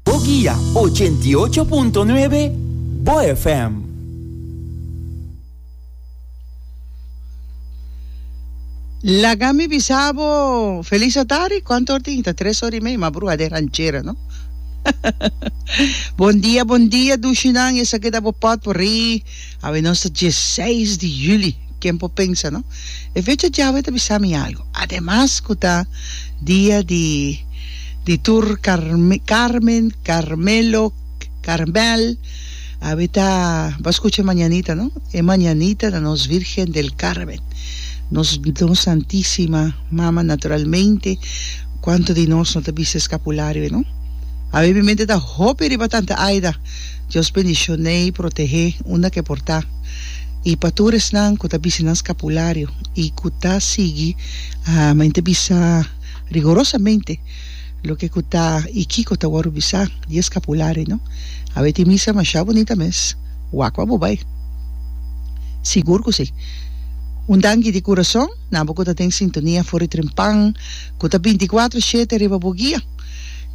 Bo guia ochenta i ocho punto nuebe Bo FM. Laga mi bisa bo feliz atari cuantu or tin ta tres ora y media ma brua de ranchera no bon dia bon dia dushinan esaki ta bo pot por ri Awe nos ta dieseis di juli, ken por pensa no? E fecha djawe ta bisa mi algo, ademas ku ta dia di di tur Carme, Carmen, Carmelo, Carmel, awe ta bo a skucha e mañanita no? E mañanita ta nos Virgen del Carmen, nos nos Santisima Mama naturalmente, kuantu di nos no ta bisa eskapulario no? Awe mi mente ta hopi riba Tante Aida. Dios bendishon'ei protehé unda ke por ta. I pa tur esnan ku ta bisi nan skapulario i ku ta sigui, men ta bisa rigorosamente loke ku ta i kiko ta wòrdu bisá di e skapulario, no? A weti misa masha bunita mes, wak pa bo bai. Sigur ku si. Un danki di kurason nan bo ku ta den sintonia for di Tren Pan ku ta binti kuatro shete riba bo guia.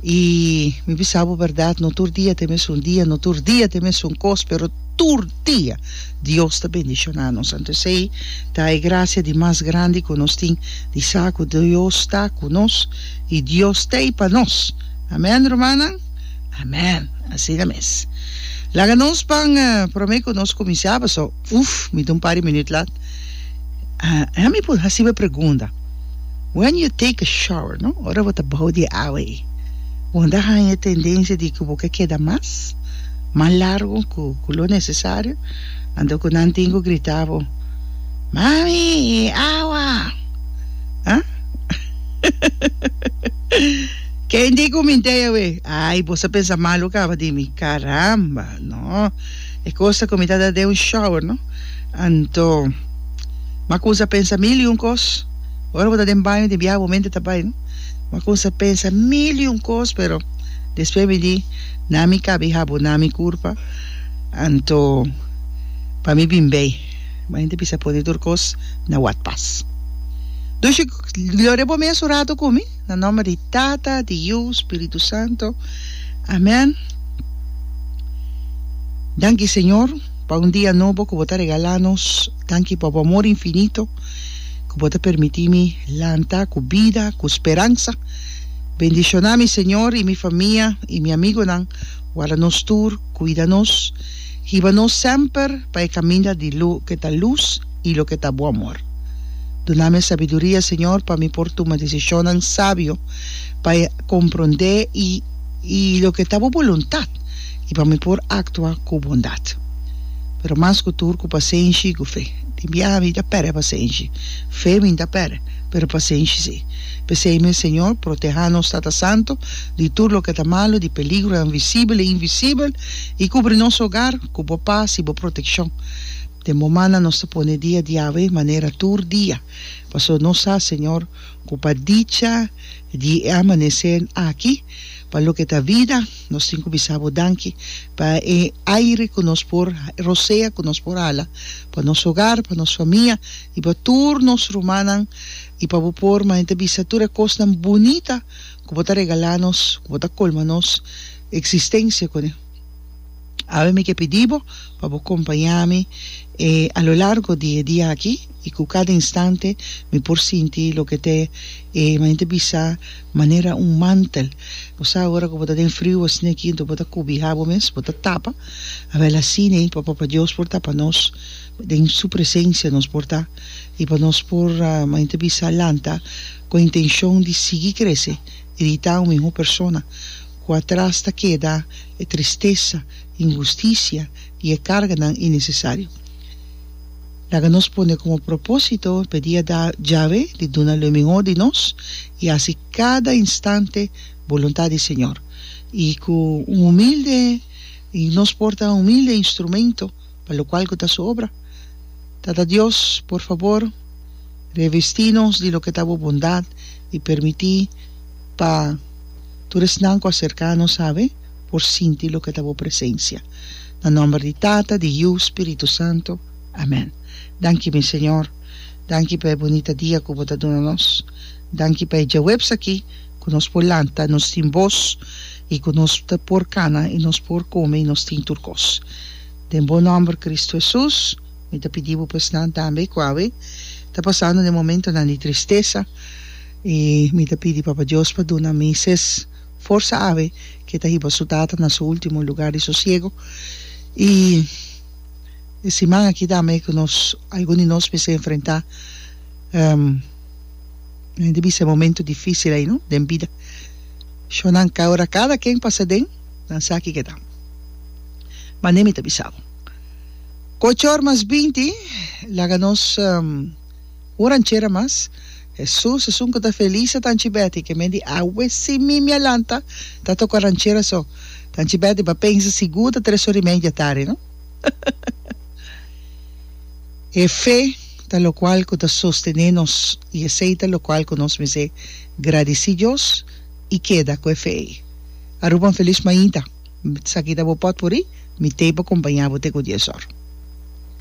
I mi bisa bo bèrdat, no tur dia ta e mesun dia, no tur dia ta e mesun kos, pero tur dia Dios ta bendishoná nos. Anto esei ta e grasia di mas grandi ku nos tin, di sa ku Dios ta ku nos i Dios t'ei pa nos. Amèn, rumannan? Amèn! Asina mes. Laga nos ban promé ku nos kuminsá, pasobra, uf, mi ta un par di minüt lat. Mi por hasiba e pregunta. When you take a shower, no? Ora bo ta bao di awa ei. Bo mester haña e tendensia di ku bo ke keda mas, mas largu ku ku lo nesesario, anto ku nan tin ku grita bo, Mami, e awa! A? Kende ku mintei awe? Ai, bo sa pensa malu kaba di mi. Karamba! No. E cosa cu mi ta da den un shower, no? Anto, m'a cuminsa pensa mil y un cos. Ora bo ta den baño tin biaha momento ta bay, no? M'a cuminsa pensa mil y un cos, pero despues mi di, Na mi cabi habu, na mi curpa. Anto, pa mi bin bay. Bay ta bisa pone tur cos na wad pas. Dushi, gloria bo mes un rato cu mi. Na nomber di Tata, di Yu, Spiritu Santo. Amen. Danki Señor pa un dia nobo cu bo ta regala nos. Danki pa bo amor infinito cu bo ta permiti mi lanta cu bida, cu speransa. Bendiciona mi Señor y mi famia y mi amigonan. Warda nos tur, cuida nos. hiba nos semper pa e kaminda di lo ke ta lus i lo ke ta bon mor. Duna mi e sabiduria, Señor, pa mi por tuma desishonnan sabio, pa e komprondé i i lo ke ta Bo boluntat, i pa mi por aktua ku bondat. Pero mas ku tur ku pasenshi i ku fe. Den biaha mi ta pèrdè pasenshi. Fe mi ta pèrdè, pero pasenshi si. P'esei mes, Señor, protehá nos Tata Santu di tur lo ke ta malu, di peligronan visibel i invisibel, i kubri nos hogar ku bo pas i bo protekshon. Den bo mannan nos ta pone dia di Yahweh manera tur dia, pasobra nos sa, Señor, ku pa dicha di e amaneser aki, pa loke ta vida, nos tin ku bisa bo danki, pa e aire ku nos por rosea, ku nos por hala, pa nos hogar, pa nos famia i pa tur nos rumannan, i pa bo por manera ta bisa tur e kosnan bunita ku bo ta regalá nos, ku bo ta kolma nos. Eksistensia con e. Awe mi ke pidi bo pa bo kompañá mi e a lo largo di e dia aki i ku kada instante mi por sinti loke ta e manera bisa manera un mantel. Bo sa ora ku bo ta den friu asina aki enton bo ta kubihá bo mes, bo ta tapa, awel asina ei pa Papa Dios por ta pa nos, den su presensia nos por ta i pa nos por manera ta bisa lanta ku intenshon di sigui krese. Irita un miho persona ku atras ta keda e tristesa, inhustisia i e karganan inesesario. Laga nos pone komo propósito pedí a Yahweh di duna lo miho di nos i hasi kada instante boluntat di Señor, i ku un humilde i nos por ta un humilde instrumento Pa locual cu ta su obra. Tata Dios, por fabor, revestí nos di loke ta bo bondad i permití pa tur esnan cu a cercá nos sabe por sinti loke ta bo presencia. Na nomber di Tata, di Yu, Spiritu Santo. Amén. Danki, mi Señor. Danki pa e bunita dia cu bo ta duna nos. Danki pa e djaweps aki cu nos por lanta, nos tin bos i cu nos ta por cana i nos por come i nos tin tur cos. Den Bo Nòmber Kristu Hesus, mi ta pidi bo pa esnan tambe ku awe ta pasando den momentonan di tristesa. I mi ta pidi Papa Dios pa duna Mises forsa awe ke ta hiba su tata na su último lugar di sosiego. I e siman aki tambe ku nos algun di nos mester enfrentá mi ta bisa e momentu difísil ei no den bida. Shornan, ora kada ken pasa den. nan sa ki keda. Mane mi ta bisa bo. Ku ocho or mas binti, laga nos un ranchera mas. Hesus esun ku ta felis a tanchi Beti, ke men di awe si mi mia lanta ta toka ranchera so. Tanchi Beti ba pensa sigur ta tres ori media tardi, no? E fe ta lokual ku ta sostené nos, i esei ta lokual ku nos mester gradisí Dios. i keda ku e fe ei. Aruba un felis mainta. Mi ta sa kita bo pot por i mi tei pa kompañá bo te ku dies or.